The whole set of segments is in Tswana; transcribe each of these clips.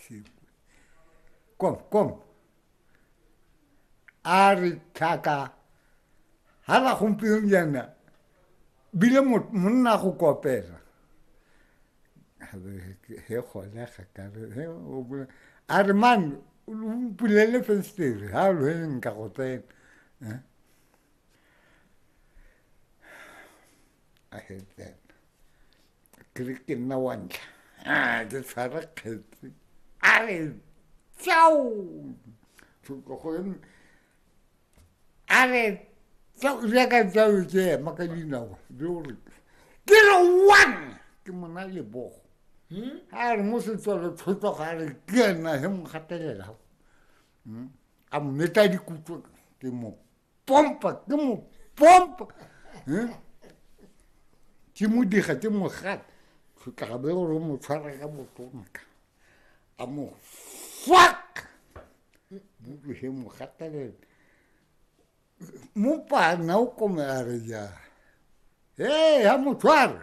Sí. Kom, kom. A re tlhaka ga la gompieno jaana bile monna go kopela he gone ga kare a re man o mpulele festere ga lo nka go tsena eh? I hate that. ke re ke nna wa ntlha Ah, ke tshwara kgetsi a re tsao a re tsao jaaka tsao ke ema ka dinao di o re ke re one ke mona lebogo hmm? a re mo setswalo tlhotlo ga re ke ena he mo gatelelago hmm? a mo metla dikutlo ke mo pompa ke mo pompa eh? ke mo diga ke mo gata tlhotlabe gore mo tshwara ka botonka a mo fuck butlwege mo gatelele mo pana o komela re jang ee ya mo tshwara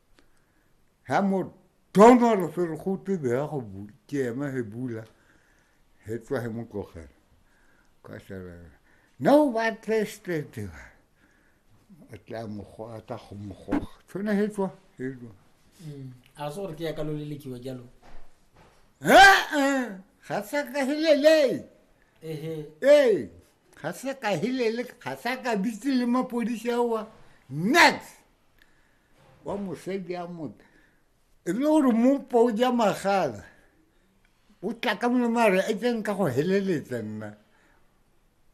ha mo dona lo fere go twe be ya go bula ke ema he bula he tswa he mo tlogela ka shara na o ba teste te ba a tla mo go a tla go mo go tshwana he tswa he tswa mm. a se gore ke ya ka lo lelekiwa jalo eh ga sa ka helele eh eh ga sa ka helele ga sa ka bitse le mapodisi awa next Wa mosadi a motho e le gore mopo o ja magala o tla ka molemo a re e tseng ka go heleletsa nna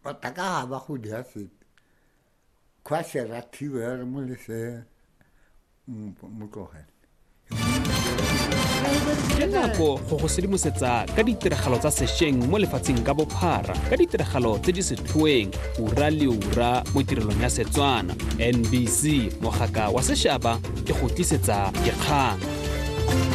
batha ka ga ba go dia sepe kgwa se rathiwe re mo lesea mo tlogele ke nako go go sedimosetsa ka ditiragalo tsa sešweng mo lefatsheng ka bophara ka ditiragalo tse di setlhoeng ura le ura mo tirelong ya setswana nbc mogaka wa sešaba ke go tlisetsa dikgang